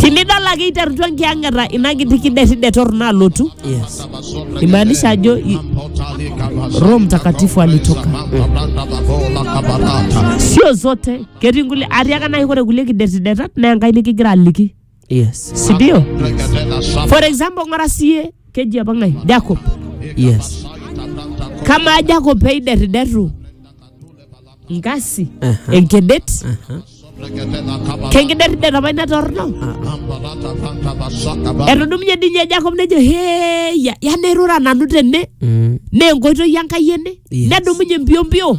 tinidol ake iterutua enkiyang'ata ina kiti kidetide torrono alotu Yes. imaanisha ajo i- roho mtakatifu alitoka sio zote ketii nkulie atiaka nai kore kulie kidetidetat naa enkai nikigira aliki yes si ndio for example ng'ora siye keji apa ng'ae jacob yes kamaa jacob peiderriderru nkasi Aha. enkedet Aha. kenkiderrider apa ina torno etudumunye ninye jacob nejo heya ya nairura nanu tene Mm. naa enkoitoi enkai ene Yes. nedumunye mpiompio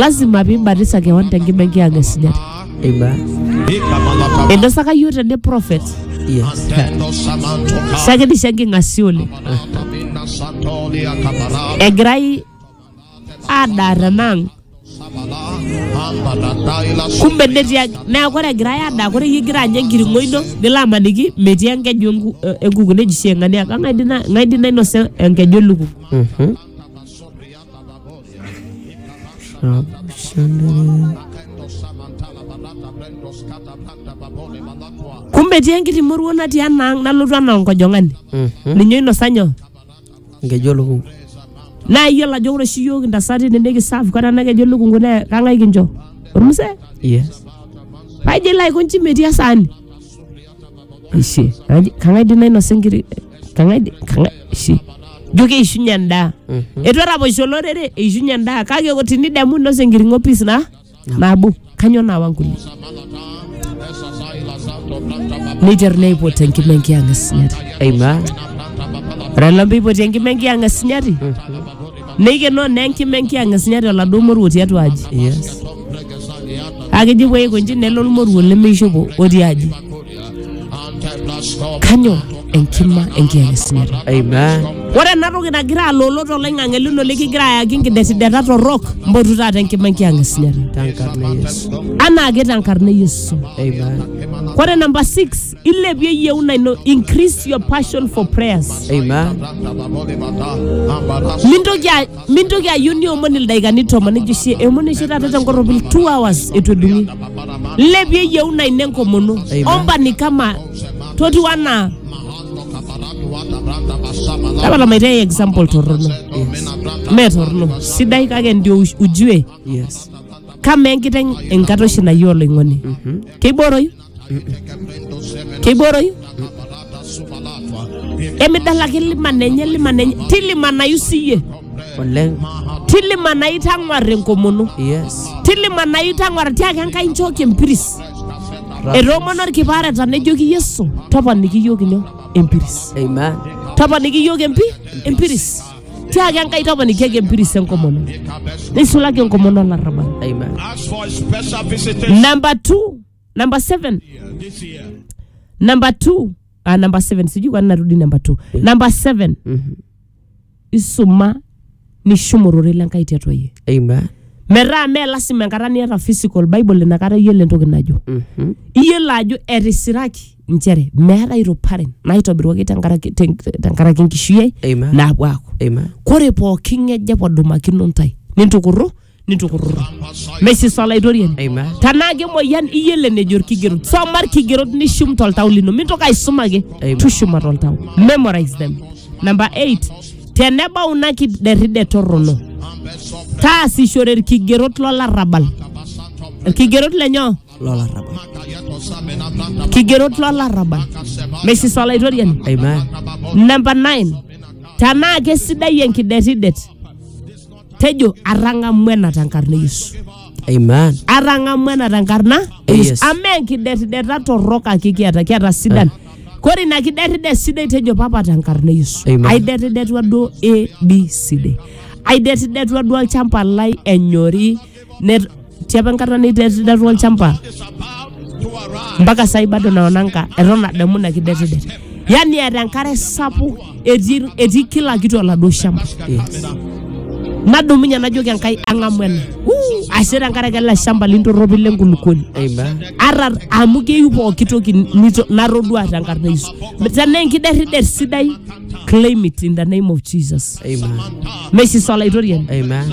lazima piibatisa kewan tenkima enkiyang'a esujata Eiba. einosaka yiok tene prophet Yes. sakidisha enking'asia oleng egirai adaa tenang kumbe netii ag- neeku ore egirai adaa kore iyie igira anya enkiring'o ino nilo amaniki metii enkeju enku- eh, enkuku neji shi eng'ania kang'ae di na- ng'ae di nainosa enkeju elukungu Mhm. kumbe etii enkiti moruo natii enaang nalotu anaa onkojong'ani ninye oinosa nyoo nkeju olukungu naa iyiolo ajo ore oshi iyiook intasati tenikisaaf kata nakejo lukungu naa kang'ae kincho ormusee yes paijo ilo aikonji metii esaani ishe Kang'ae- kang'ae dii nainosa enkiri kang'ae di- kang'ae ishe jo keishunye endaa etu eraposho olorere eishunye endaa kake o- tinidemu inosa enkiring'o pis na nabo kanyoo naawa nkulie neiter neipot enkima enkiyang'a sinyati Amen. ore lombe eipoti enkima enkiyang'a sinyati Neikenoo naa enkima enkiyang'isinya te oladuo moruo tiatua aji. Yes. Kake eji pee eiko nji nelo olmoruo lemeishopo otii aji. Kanyoo? Enkima enkiyang'isinyata. Amen. Ore ena toki nagira aloolo toloing'ang'e lino likigira ayaki nkidetideta torrok, mpotu taata enkima enkiyang'isinyata. Tenkarna Yesu. Anaake tenkarna e Yesu. Amen. Ore namba 6 ilepie yieuna ino increase your passion for prayers Amen. mintoki a- mintoki ayieu niomon ildaikani tomon ejo oshi eomon oshi taata tenkorropil two hours etu edung'i lepie yieuna ino enkomono Amen. omba ni kama totiu anaa tapala maitae example torrono mee torrono sidai kake ndio uj- ujue Yes. kama enkiteng enkata oshi nayieu oloing'oni keibooroyu kei booroyu emidalaki liman enye liman enye tilimanayu siyie oleng tilimanayu tang'war enkomono yes tilimanayu tang'war tiaki enkai nchooki empiris etoomono olkipaareta nejoki yesu toponiki iyiook inyoo empiris amen toponiki iyiook empi empiris tiaki enkai toponikiaki empiris enkomono neisulaki enkomono olarrabal amen Ask for a special visitation. namba two number 7 number 2 ah, number 7 sijui kwani narudi number 2 number 7 isuma nishumu ororei lenkai tiatua yie Amen. metaa mee lasima enkata niata physical bible inakata iyiolo entoki najo Mhm. iyiolo ajo etisiraki nchere meeta iruparen naitobiruaki tenkaraki ten- tenkaraki enkishui ai Amen. naapuo aaku Amen. kore pooki ng'eje podumakino ntae nintukurru nitukururu mesisa olaitoriani Amen. tanaa kemoyian iyiolo enejo irkigerot soma irkigerot nishum toltau lino mintoki aisum ake Amen. tushuma toltau memorize them number 8 tenebau ina kiderride torrono taasishore irkigerot lolarrabal irkigerot lenyoo Lola raba. kigerot lolarrabal mesisa olaitoriani Amen. namba 9 tanaa kesidai enkidetidet tejo atang'amu ena tenkarna e yesu Amen. atang'amu ena tenkarna e Yes. yesu amaa enkidetideta torrok ake kiata kiata sidan kore ina kidetida sidai tejo papa tenkarna e yesu Amen. aidetidetua duo abcd aidetidetua duo olchamba lai enyori Net, tiapa enkata nitetetua olchamba mpaka sai bado naonanga eton adamu ina kidetidet yani eeta enkare sapuk etii etii kila kitu oladuo shamba nadumunye najoki enkai ang'amu ena Wuu, ashe tenkaraki ele shamba lintorropi lenkulukuoni Amen. ata amu keyieu pooki toki nito- natodua tenkarna yesu tenaa enkiderridet sidai claim it in the name of jesus Amen. mesisa olaitoriani Amen.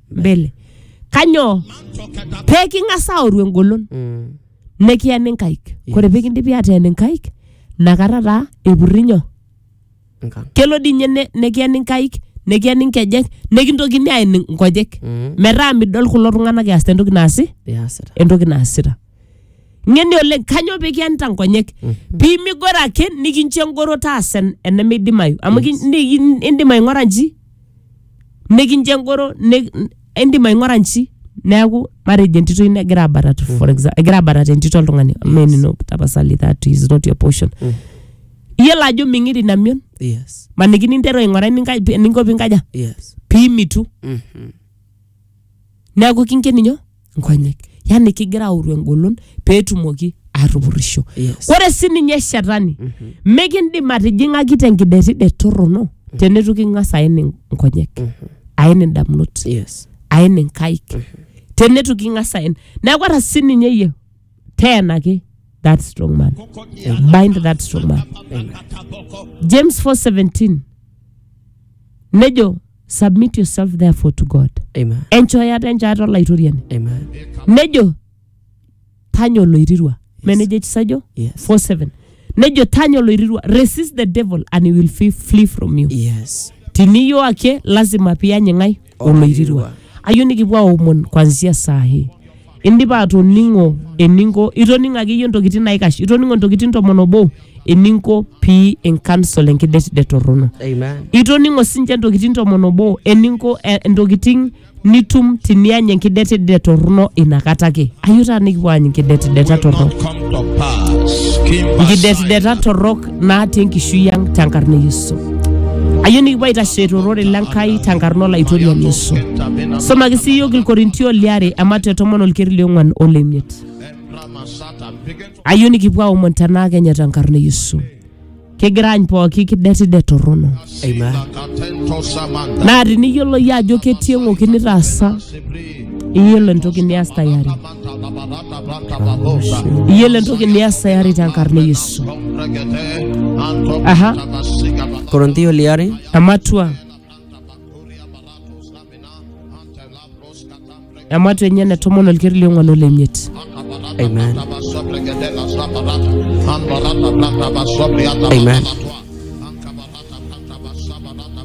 mbele kanyoo pee king'as aoru engolon Mm. nikiyen inkaik kore pee kindipi ateen inkaik nakata taa epurri nyoo Nka. kelo dii ninye ne- nekiyen inkaik nekiyen inkejek nekintokini aen inkojek Mm. metaa midol kulo tung'anak easita entoki naasi Iasita. entoki naasita ng'eni oleng kanyoo pee kiyanita nkonyek pee migoro ake nikincho engoro taasa en- enemeidimayu amu kin- ni- in- indim aing'ora nji nikincho engoro ni- indim aing'ura nchi neeku matejo entito ino egira abatata for example egira abatata entito oltung'ani mee enino tapasali that is not your portion iyiolo ajo ming'iri ina mion yes maniki ninteru aing'ura eninka- eninko pinkaja yes pimitu Mhm. neeku kinken inyoo nkonyek yani kigira aoru engolon peetumoki aatupurisho Yes. ore sininye shetani mikindim atijing'aki tenkidetidet torrono teneitu king'as aen in- nkonyek aen indamunot Yes. aen inkaik teneitu king'as aen neeku ata sininye iyie teenaki that strong man bind that strong man james 417 nejo submit yourself therefore to god Amen. enchooyata enchaata olaitoriani Amen. nejo tanya oloirirua menejo ekisajo Yes. 47 nejo tanya oloirirua resist the devil and he will flee, flee from you Yes. tiniyo ake lazima piyany ng'ae oloirirua Oloirirua. ayieu nikipuo aomon kwanzia saa hii indipa atoning'o eninko itoning'o akeyie intokitin naikash itoning'o intokitin tomon obo eninko pii inkansol enkidetidet torrono Amen. itoning'o sinche intokitin tomon obo eninko eh, intokitin nitum tiniany enkidetidet torrono inakata ake ayieu taa nikipuo aany inkidetideta torrok Come to pass. Kimba inkidetideta torrok naata enkishui ang tenkarna e Yesu. Ayieu nikipuo aitashe torore le Nkai tenkarna olaitoriani Yesu. Somaki sii iyiook Ilkorintio liare emat e tomon olkeri liong'uan o lemiet. Ayieu nikipuo aomon tenaa kenye tenkarna e Yesu. Kigira any pooki kidetide torrono. Amen. Naa tiniyiolo iyie ajo ketii eng'oki nitaasa, iyiolo entoki nias tayari. Iyiolo entoki nias tayari tenkarna e Yesu. Aha, Koronthio liare ematua. Ematua enye ene tomon olkeri le ong'uan ole imiet. amen Amen.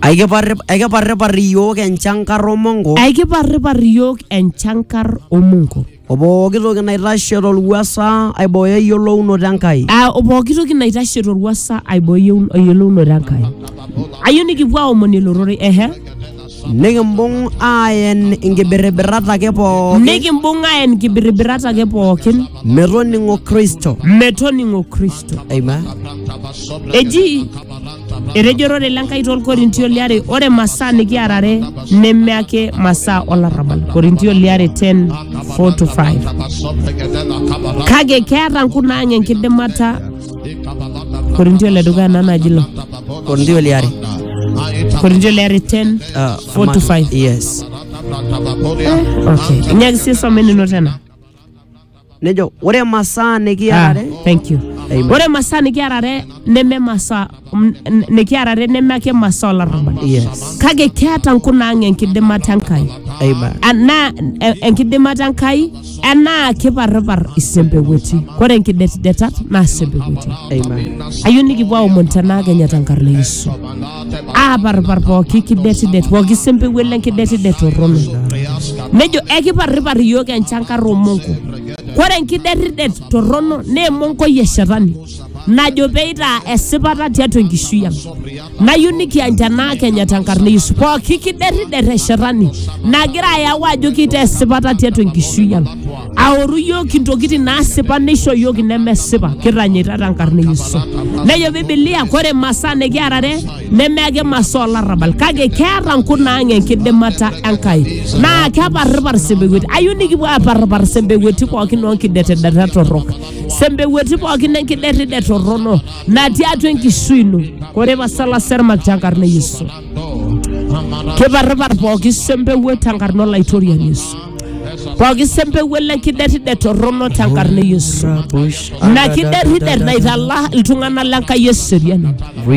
Aikiparrip- Aikiparripar iyiook enchankar o mongo Aikiparripar iyiook enchankar o mongo. o pooki toki naitashe tolwuasa aibooyo eyiolounoto Enkai. Ah, o pooki toki naitashe torwuasa aibooyo eyiolounoto Enkai. Ayieu nikipuo aomon elororei ehe. Nikimbung aaen inkibirribirat ake pookin nikimbung aaen inkibirribirat ake pookin metoning'o Kristo. metoning'o kristo Amen. eji etejo ororei le Nkai tolkorintio liare ore masaa nikiarare neme ake masaa olarrabal korintio liare 10 4 to 5 kake keeta nkunaang enkidimata Korintio le dukuya nanu aji ilo. Korintio liare. Korintio le are 10. Uh, Four to five. Yes. Okay. Inyaaki sii some nino tena. Nejo ore masaa Ah, nikiarare thank you. Amen. Ore masaa nikiarare neme masaa m- n- nikiarare neme ake masaa olarrabal Yes. kake keeta nkunaang enkidimata enkai Amen. anaa e- enkidimata enkai enaa kiparripar isempewueti kore nkidetidetat naa sempewueti Amen. ayieu nikipuo aomon tenaa kenya tenkarna e yesu aaparripar pooki kidetidet pooki sempewuet lenkidetidet torrono nejo ekiparripar iyiook enchankar omonko kore enkidetidet torrono naa emonkoi e shetani najo peitaa esipata tiatua enkishui ang nayieu nikiany tenaa kenya tenkarna yesu pooki kiderrider eshetani nagira ayau ajo kitaa esipata tiatua enkishui ang aoru yiok intokitin naasipa neisho yiok inemesipa kitanyaita tenkarna yesu nejo bibilia kore masaa nikiarare neme ake masaa olarrabal kake keeta nkunaang enkidimata enkai naa keparripar sembekweti ayieu nikipuo aparripar sembekweti pookin onkidetedeta torrok sempewueti pookin enkiderrider torrono natii atua enkishui ino kore pasala sermak tenkarna e yesu kiparripar pooki sempewuo tenkarna olaitoriani yesu pooki sempewuo lenkiderrider torrono tenkarna e yesu ina kiderrider naitala iltung'anak lenkai eseriani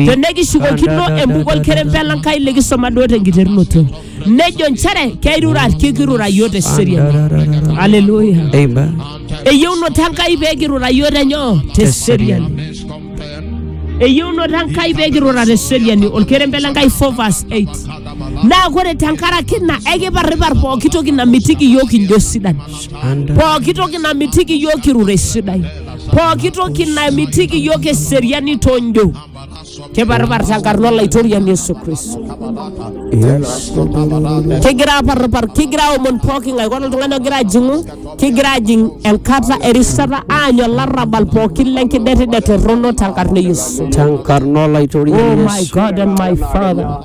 tenekishukokino embuku olkerempe lenkai likisoma duo tenkiterunoto nejo nchere keirura kikirura yiok te seriani aleluya Amen. eyieunoto enkai pee kirura yiok tenyoo te seriani eyieunoto enkai pee kirura te seriani olkerembe le nkai 4 verse 8 naa kore tenkaraki ina ekiparripar pooki toki namitiki yiok kinjo sidan And pooki toki namitiki yiok kirure sidai pooki toki namitiki yiok eseriani tonjo keparrparsa nkarn olaitoriani Yesu Kristo. Kigira aparrpar, kigira aomon pooki ng'ae, ore oltung'ani ogira ajing'u, kigira ajing enkata erishata aanyu olarrabal pookin lenkidetidet torrono tenkarna e Yesu. Tenkarna Oh my olaitoriani Yesu. God and my Father.